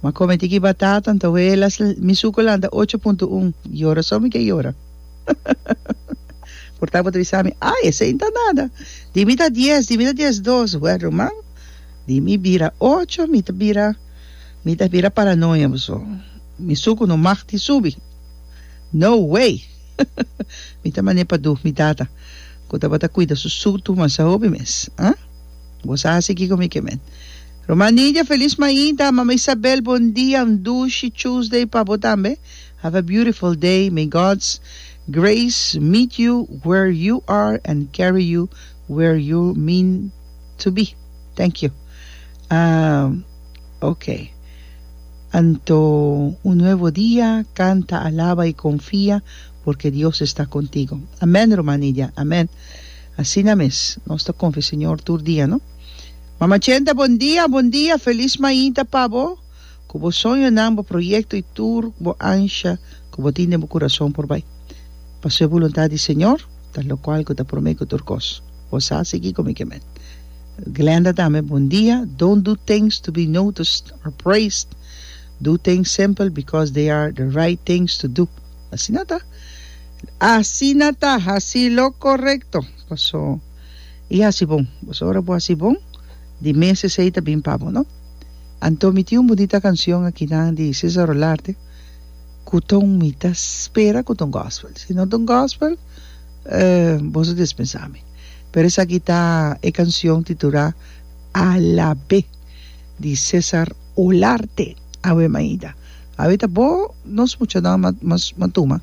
Ma come tiki batata nta huelas l mi suco la nta ocho punto un yora so mi ke yora por ta bo ta bisa mi ay esey nta nada di mi ta dies di mi ta dies dos wea ruman di mi bira ocho mi ta bira mi ta bira paranoia bo so mi suco no mag di subi no way mi ta mane pa du mi tata cu tabata cuida su sutu masa hopi mes ah bo sa haci kiko mi ke men. Ruman Nidia feliz mainta mama Isabel bon dia un dushi Tuesday pa bo tambe have a beautiful day may God's grace meet you where you are and carry you where you mean to be thank you ahm okay anto un nuevo dia canta alaba y confia porque Dios esta contigo amen ruman Nidia amen asina mes nos ta confia Señor tur dia no. Mama Chenta bon dia bon dia felis mainta pa bo cu bo soñonan bo proyecto y tur bo ansha cu bo tin den bo curason por bay pasobra e buluntad di Señor ta locual cu ta prome cu tur cos bo sa sigui cu mi ke men Glenda tambe bon dia don't do things to be noticed or praised do things simple because they are the right things to do asina ta asina ta haci lo correcto paso. i hasi bon. Boso ora bo hasi bon, di mes esei ta bin pa bo, no? Anto mi tin un bunita kanshion akinan di Cesar Olarte ku ta un mi ta spera ku ta un gòspel. Si no ta un gòspel, boso dispensá mi. Pero esaki ta e kanshion titulá Alab'é di Cesar Olarte. Awe mainta. Awe ta bo nos muchanan, mas matuma.